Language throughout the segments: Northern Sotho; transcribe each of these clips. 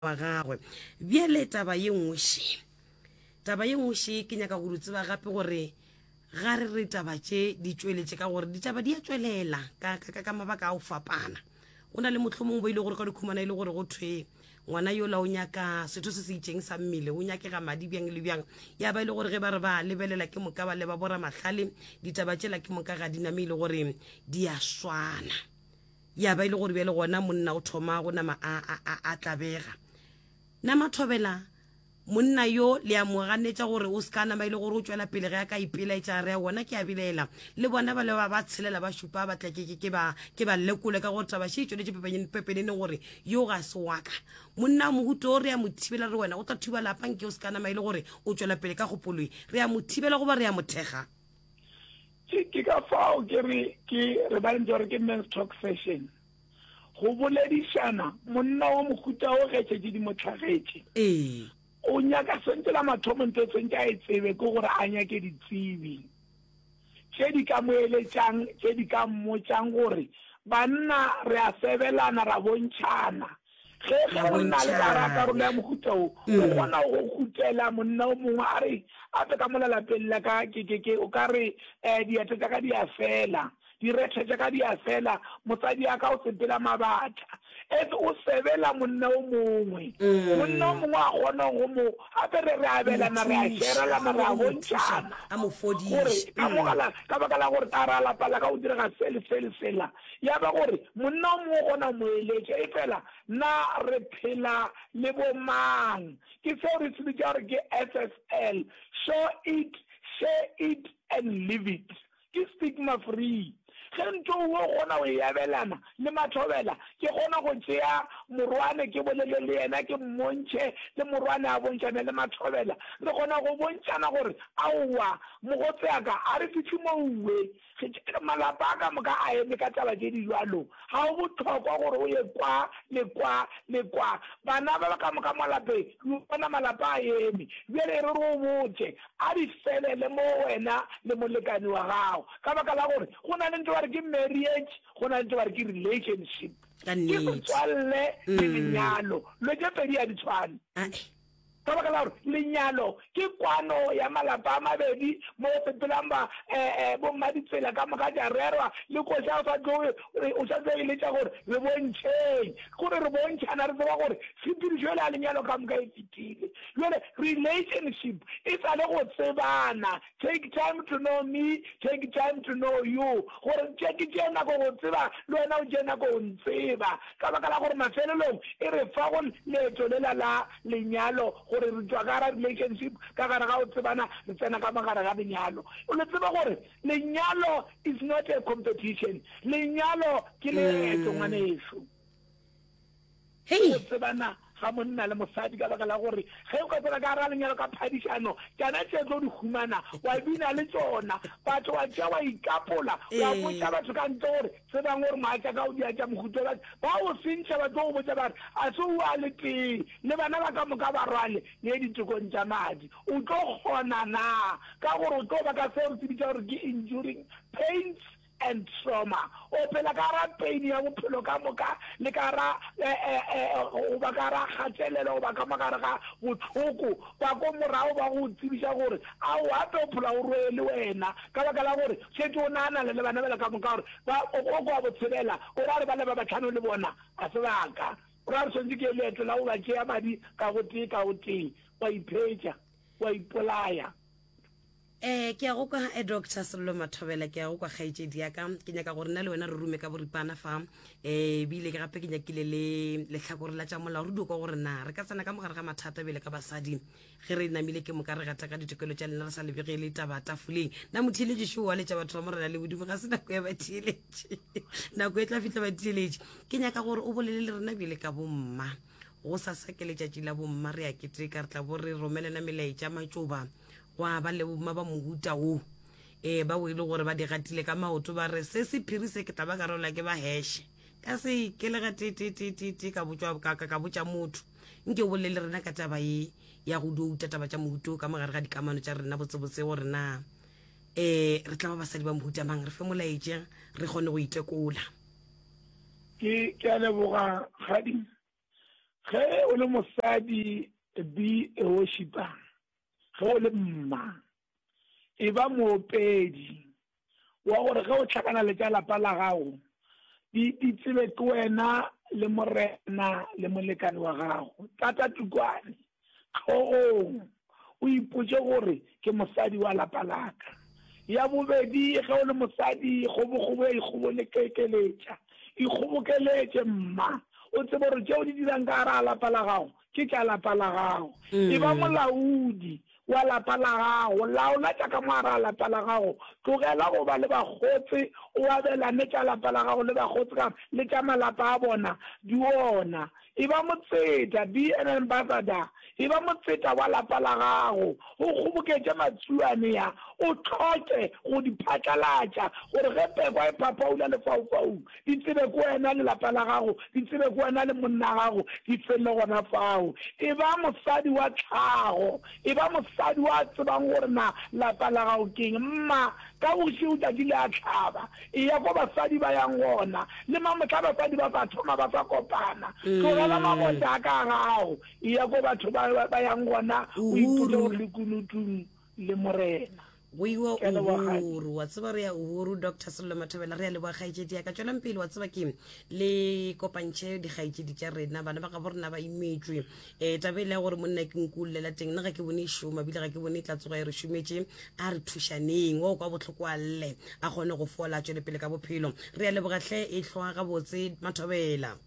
wa gagwe bjale taba ye nngwe še taba ye nngwe še ke nyaka gore tseba gape gore ga re re taba tše di tšweletše ka gore ditaba di a tšwelela ka, ka, ka, ka mabaka a go fapana go na le motlho mongwe bo e le gore ka dikhumana e le gore go thwe ngwana yola o nyaka setho se se itšeng sa mmele o nyakega madi bjang le bjang ya ba e le gore ge ba re ba lebelela ke moka ba leba bora mahlale ditaba tšela ke moka ga diname e le gore di a swana Ya ba e le gore bjale gona monna o thoma go nama a, a, a, a tlabega. Na Mathobela, monna yo le a mo ganetša gore o seka nama e le gore o tšwela pele ge a ka ipelaetša re a gona ke a bilaela le bona ba le ba ba tshelela ba šupa ba tlekeke ke ba ke ba lekole ka gore taba še e tšweletše pepeneneng gore yo ga se waka monna o mohuto o re a mo thibela re wena o tla thuba lapa nke o seka nama e le gore o tšwela pele ka kgopoloi re a mo thibela goba re a mothekga Ke, ke ka fao ke re, ke re ba ntse gore ke men's talk session. Go boledišana, monna wa mohuta o getšetše di mo tlhagetše. Ee. O nyaka sentse la mathomo ntho e sentse a e tsebe ke gore a nyake ditsebi tše di ka mo eletšang, tše di ka mmotšang gore banna re a sebelana, ra bontšhana. Ge e le gore nna le ka rata rolo ya mohuta wo, o kgona go khuthela monna o mongwe a re ape ka mo lalapeng la ka, ke, ke, ke, o ka re, eh, diatla tša ka di a fela, direthe tša ka di a fela, mosadi a ka o sepela mabatla. Ese o sebela monna o mongwe. Monna o mongwe a kgona go mo, gape re, re abelana, re a sherelana, re a bontšhana, gore ka mogala, ka baka la gore ka gare ga lapa la ka go direga se le se le sela. Ya ba gore monna o mongwe o kgona go mo eletša, efela na re phela le bomang? Ke seo re se bitša gore ke SSL, Show It, Share It and Live It. Ke stigma free. Ge ntho o kgona go e abelana le mathobela, ke kgona go tšea morwane ke bolele le yena, ke mmontšhe le morwane a bontšhane le mathobela. Re kgona go bontšhana gore, Aowa, mogotseaka, a re fihle mo uwe. Malapa a ka moka a eme ka taba tše di bjalo. Ga go bohlokwa gore o ye kwa le kwa le kwa. Bana ba ka moka mo lapeng, le o bona malapa a eme. Bjale e re re o botše, a di felele mo wena le molekane wa gago. Ka baka la gore go na le ntho ba re ke marriage, go na le ntho ba re ke relationship. Ke setswalle le lenyalo. Lo tše pedi ga di tshwane. Ka baka la gore lenyalo ke kwano ya malapa a mabedi mo go sepelang ba bommaditsela ka moka tša rerwa, le kgoši a sa tloge o sa tlo e letša gore re bontšheng. Ke gore re bontšhana re tseba gore tshepedišo yela ya lenyalo ka moka e fetile. Bjale relationship e sa le go tsebana. Take time to know me, take time to know you, gore nke ke tšee nako go tseba le wena o tšee nako go ntseba, ka baka la gore mafelelong e re fa go leeto lela la lenyalo, gore re tšwa ka gare ga relationship, ka gare ga go tsebana, re tsena ka mo gare ga lenyalo. O le tsebe gore lenyalo is not a competition, lenyalo ke leeto ngwanešu. ke go tsebana ga monna le mosadi ka baka la gore ge o ka tsena ka gara lenyalo ka phadišano tšana tše tlo di humana wa bina le tsona batho wa tšea wa ikapola wa botša batho ka ntle gore tsebang gore moatša ka o dia tša mohuto ba ba o sentšha ba tlo go botša ba re a se o a le tee le bana ba ka moka ba rwale le ditekong tša madi o tlo kgona na ka gore o tlo ba ka seo re se bitša gore ke enduring pains and trauma. O phela ka gare ga pain ya bophelo ka moka le ka gare ga eh, eh, eh, go ba ka gare ga kgatelelo goba ka mogare ga botlhoko ba ko morago ba go tsebiša gore a o gape o phela o roe le wena ka baka la gore šetse o naganale le bana bela ka moka gore ba o kwa botshelela o ra re ba le ba batlhano le bona a se baka o ra re tshwanetse ke leeto la go ba tšea madi ka gotee ka gotee wa iphetša wa ipolaya Ee, ke a go kwa, eh, Doctor Sello Mathobela, ke a go kwa kgaetšedi ya ka. Ke nyaka gore nna le wena re rume ka boripana fa. Eh, bile ke gape ke nyakile le lehlakore la tša molao re dio kwa gore na re ka tsena ka mogare ga mathata bjele ka basadi. Ge re namile ke moka re gata ka ditokelo tša lena re sa lebegele taba tafoleng. Na motheeletši šo wa letša batho ba morena le bodimo ga se nako ya batheeletši. Nako e tla fihla batheeletši. Ke nyaka gore o bolele le rena bjele ka bomma. Go sasa ke letšatši la bomma re a keteka re tla bo re romelana melaetša matšoba Gwa ba le boma ba mohuta wo, ee, bao e le gore ba di gatile ka maoto, ba re, Se sephiri se ke tla ba ka rola ke ba heshe. Ka se ke le ga tee-tee-tee-tee-tee ka botšwa ka ka ka botša motho, Nke o bolele le rena ka taba ye ya go douta taba tša mohuta wo ka mo gare ga dikamano tša rena botsebotse gore na ee re tla ba basadi ba mohuta mang, re fe molaetša re kgone go itekola. Ke, ke a leboga, kgadi. Ge o le mosadi, be a worshiper. ge o le mma e ba moopedi wa gore ge o tlhakana le tša lapa la gago di di tsebe ke wena le morena le molekane wa gago tata tukwane tlhogong o ipotse gore ke mosadi wa lapa laka ya bobedi ge o le mosadi kgobokgobo ya ikgobolekekeletša ikgobokeletše mma o tsebe gore tšeo di dirang ka gara lapa la gago ke tša lapa la gago. E ba molaodi wa lapa la gago, laola tša ka mo gare ga lapa la gago. Tlogela go ba le bakgotse, o abelane tša lapa la gago le bakgotse ka gore le tša malapa a bona di gona. E ba motseta, be an ambassador, e ba motseta wa lapa la gago. O kgoboketše matsuane a, o hloke go di phatlalatša gore ge pekwa e phapaula lefaufaung, Di tsebe ke wena le lapa la gago, di tsebe ke wena le monna gago, di tsene gona fao. E ba mosadi wa tlhago, e ba mosadi wa tsebang gore na lapa la gago ke eng. Mma ka bošego tšatši le a hlaba, eya ko basadi ba yang gona. Le mamohla basadi ba sa thoma ba sa kopana. Tlogela mabota a ka gago, eya ko batho ba yang gona, o ipotše gore lekunutung le Morena. Go iwa Uhuru, wa tseba re ya Uhuru, Doctor Sello Mathobela, re ya leboa kgaetšedi ya ka. Tšwelang pele, wa tseba ke le kopantšhe dikgaetšedi tša rena, bana ba gabo rena ba imetšwe. Um tabe le ya gore monna ke nku llela teng, nna ga ke bone e šoma, bile ga ke bone e tla tsoga e re šometše. A re thušaneng, wa o kwa bohloko a lle, a kgone go fola, a tšwele pele ka bophelo. Re ya lebogatlhe e hlwa gabotse Mathobela.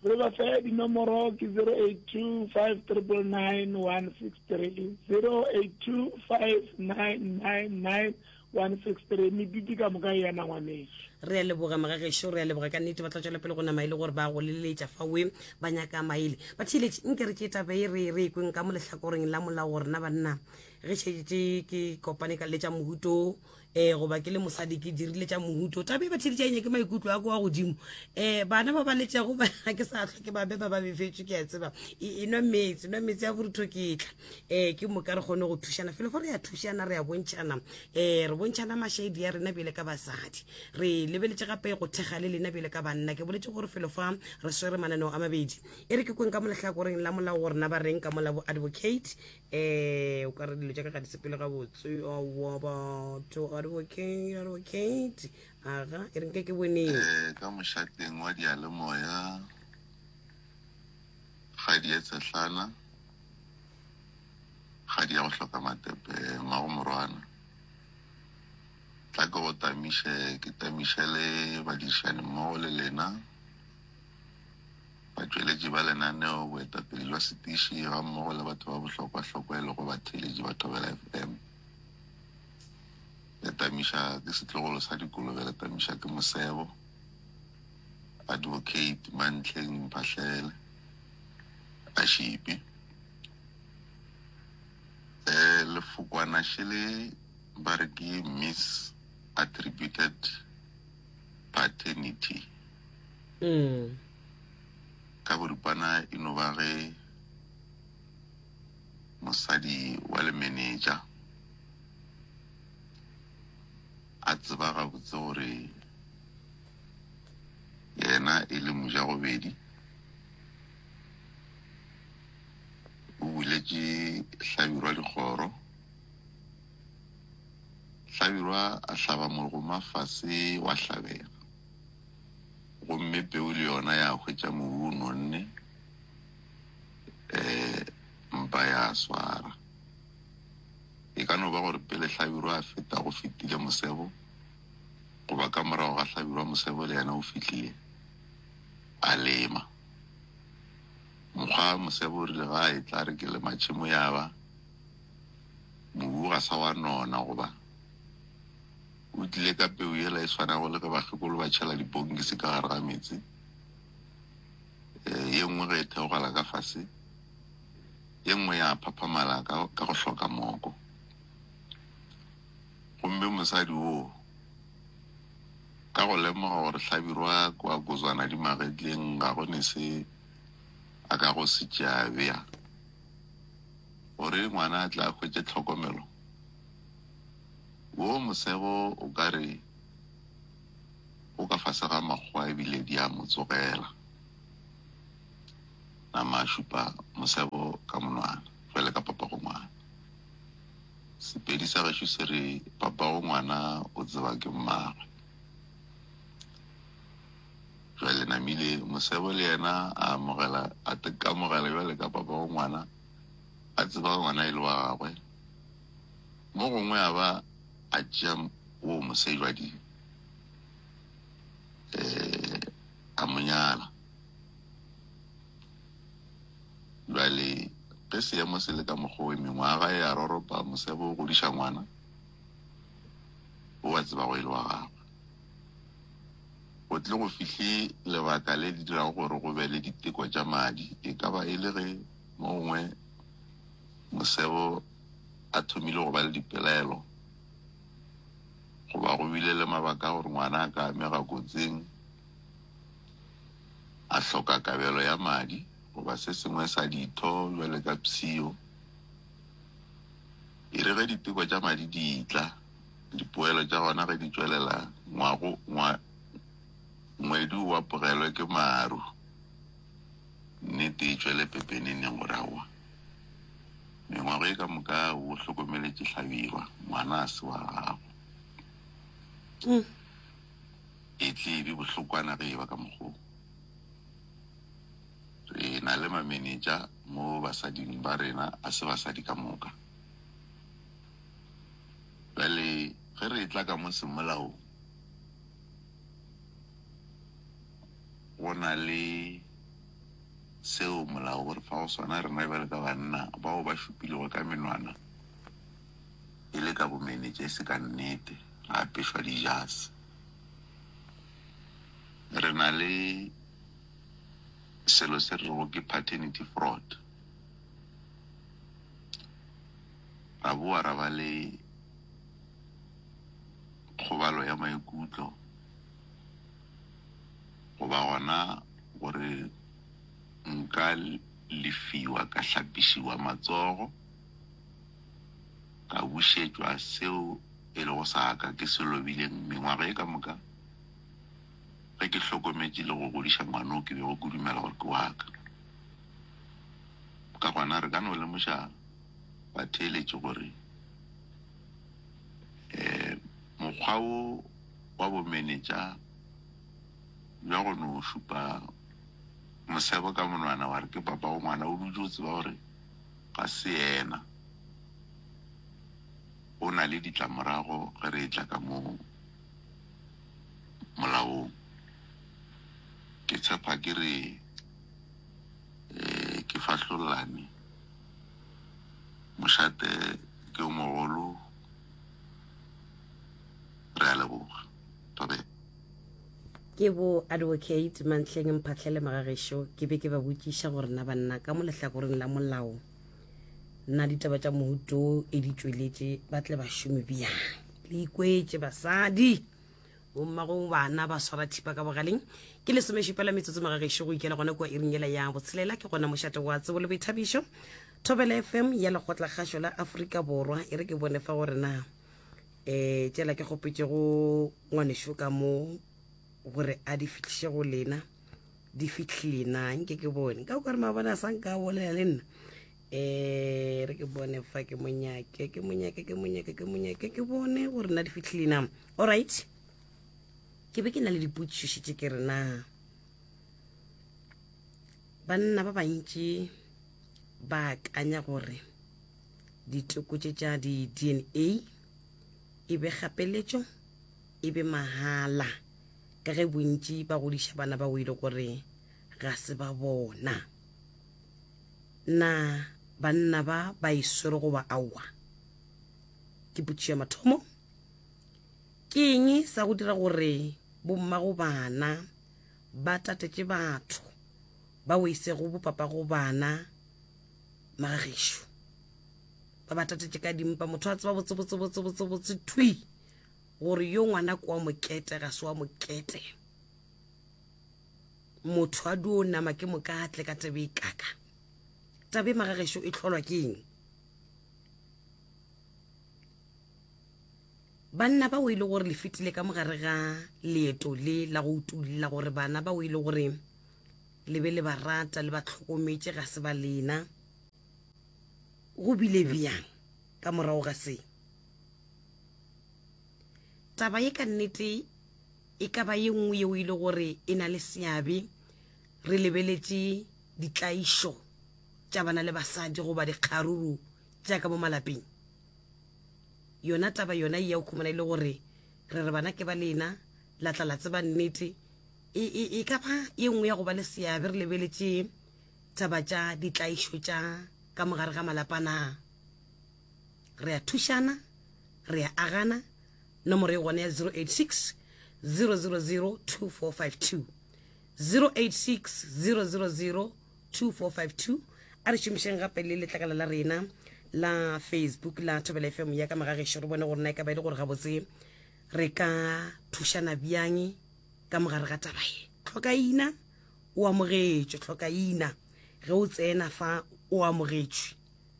Re ba fe dinomoro ke 082 599 163, 082 599 163, mediti ka moka ya nangwaneso. Re a leboga mga gešo, re a leboga ka nnete ba tla tšwela pele go nama e le gore ba go leleletša fa we ba nyaka maele. Batheeletši, nke re ke taba e re re ekweng ka mo lehlakoreng la molao gore na banna ge šetše ke kopane ka le tša mohuto um goba ke le mosadi ke dirile tša mohuto taba e ba tšheditša enya ke maikutlo a ko wa godimo um bana ba ba letšago ba ke sa tlhwa ke ba be ba ba befetswe ke a tseba e, e nwa metse nwa metse ya borutho ke tla um ke moka re kgone go thušana felo fa re ya thušana re ya bontšhana um re bontšhana mashaedi ya rena bjele ka basadi re lebeletše gape go thekga le lena bjele ka banna ke boletse gore felo fa re swere mananeo a mabedi e re ke kweng ka molahlakoreng la molao go rena ba reng ka molabo advocate Eeh o ka re dilo tša ka ga di sepele gabotse aowa batho ga di okay ga di okay aga e re nke ke boneng Eh, ka mošateng wa dialemoya ga di etsehlana ga di ya go hloka matepe ngwago morwana tla ke go tamiše ke tamiše le badirišani mmogo le lena batšweletši ba lenaneo, boetapele bja setiši gammogo le batho ba bohlokwahlokwa e lego batheeletši ba Thobela FM. Letamiša ke setlogolo sa dikolobe, Letamiša ke mosebo. Advocate Mantleng Mphahlele a šipi eh, lefokwana šele ba re ke miss attributed paternity ka boripana e no ba ge mosadi wa lemeneja a tseba gabotse gore yena e le mojagobedi o buletše hlabirwa dikgoro Hlabirwa a hlaba morgoma fase wa hlabega, gomme peu le yona ya hwetša mobu o nonne, ee, mpa ya swara. E ka no ba gore pele Hlabirwa a feta go fetile Mosebo, goba ka morago ga Hlabirwa Mosebo le yena o fihlile a lema. Mokgwa Mosebo o rile ga a etla a re ke lema tšhemo ya ba, Mobu ga sa wa nona goba o tlile ka peu yela e swanago le ge bakgekolo ba tšhela diponkisi ka gare ga meetse. Ee, ye nngwe ge e theogela ka fase, ye nngwe ya phaphamala ka, ka go hloka moko. Gomme mosadi woo, ka go lemoga gore hlabirwa ke wa kozwana di magetleng, ga go ne se a ka go se tšea bea. gore ngwana a tle a hwetše tlhokomelo, wo mosego o ka re o ka fase ga makgowa e bile di a mo tsogela. Nama a šupa mosego ka monwana bjale ka papagongwana. Sepedi sa gešo se re papagongwana o tseba ke mmagwe. Ge le namile, mosebo le yena a amogela, a tekamogela bjale ka papa wa ngwana, a tseba ge ngwana e le wa gagwe. Mo gongwe a ba a tšea woo mosebjadi, eh, a mo nyala. Bjale ge seemo se le ka mokgwa wo, mengwaga e a roropa, mosebo o godiša ngwana, o a tseba go e le wa gagwe. go tle go fihle lebaka le le dirago gore go be le diteko tša madi. E ka ba e le ge mo gongwe mosebo a thomile go ba le dipelaelo goba go bile le mabaka a gore ngwana a ka amega kotsing, a hloka kabelo ya madi goba se sengwe sa ditho bjale ka psio. E re ge diteko tša madi di tla, Dipoelo tša gona ge di tšwelela ngwago ngwa, ngwedu wa pogelwe ke maru, nnete e tšwele pepeneneng gore aowa. Mengwago e ka moka o hlokomeletše hlabirwa, ngwana a se wa gago. Mm. E tle e be bohlokwana ge e ba ka mokgoo. Re na le mamenetša mo basading ba rena a se basadi ka moka. Bjale, ge re etla ka mo semolaong, go na le seo Molao o re fago sona, rena bjalo ka banna bao ba šupilego ka menwana e le ka bomenetša, e se ka nnete, ra apešwa dijase. Re na le selo se re rego ke paternity fraud. ra boa ra ba le kgobalo ya maikutlo, goba gona gore nka lefiwa ka hlapišiwa matsogo, ka bušetšwa seo e lego sa ka ke se lobileng mengwaga ye ka moka ge ke hlokometše le go godiša ngwana o ke bego ke dumela gore ke wa ka. Ka gona re ka no lemoša. ba theeletše gore um mokgwa wo wa bomenetša bja go no šupa mosebo ka monwana wa re ke papa go ngwana o dutše o tseba gore ga se yena, o na le ditlamorago ge re etla ka mo molaong. Ke tshepa ke re um ke fahlollane. Mošate ke yo mogolo, re a leboga. Thobela. Ke bo Advocate Mantleng Mphahlele Magagešo, ke be ke ba botšiša gore na banna ka mo lehlakoreng la molao na ditaba tša mohuto e di tšweletše ba tle ba šome bjang. Le ikwetše basadi! bommago bana ba swara thipa ka bogaleng ke lesomešupela metsotso magagešo go ikela gona kua iringela ya botshelela ke gona mošate wa tsebo le boithabišo thobela fm ya lekgotla kgašo la aforika borwa e re ke bone fa gore na um tšela ke kgopetšego ngwanešo ka mo gore a di fitlhiše go lena di fitlhile na nke ke bone ka kore mabone a sa nka bolela le nna Eh, re ke bone fa ke monyake ke monyake ke monyake ke monyake ke bone gore na di fitlhile na all right ke be ke na le dipotšiši tse ke re na banna ba bantši ba akanya gore diteko tše tša di-dna e be kgapeletšo e be mahala ka ge bontši ba godiša bana ba o ile gore ga se ba bona Na banna ba ba e swere goba aowa? Ke potšišo ya mathomo. Ke eng sa go dira gore bomma go bana ba tatetše batho ba weise go bopapa go bana magagešo? Ba ba tatetše ka dimpa. Motho a tseba botse botse botse botse botse thwi gore yo ngwana kwa mokete ga se wa mokete. motho a duo nama ke mokatle ka tebe e kaka tabe magagešo e tlholwa ke eng banna bao e le gore le fetile ka mogare ga leeto le la go utulla gore bana bao e le gore le be le ba rata le ba tlhokometše ga se ba lena go bile bjang ka morago ga se taba ye ka nnete e ka ba ye nngwe yeo e le gore e na le seabe re lebeletše ditlaišo tša bana le basadi goba dikgaruru tša ka mo malapeng yona taba yona e ya o khumana e le gore re re bana ke ba lena la tla la tseba nnete e, e, e ka ba ye nngwe ya go ba le seabe re lebeletše taba tša ditlaišo tša ka mogare ga malapa na Re a thušana, re a agana, nomoro e gona ya 086 000 2452. 086 000 2452. A re šomišeng gape le letlakala la rena la Facebook la Thobela FM ya ka Magagešu re bone gore na e ka ba e le gore gabotse re ka thušana bjang ka mogare ga taba ye. Tlhokaina o amogetšwe, tlhokaina ge o tsena fa o amogetšwe.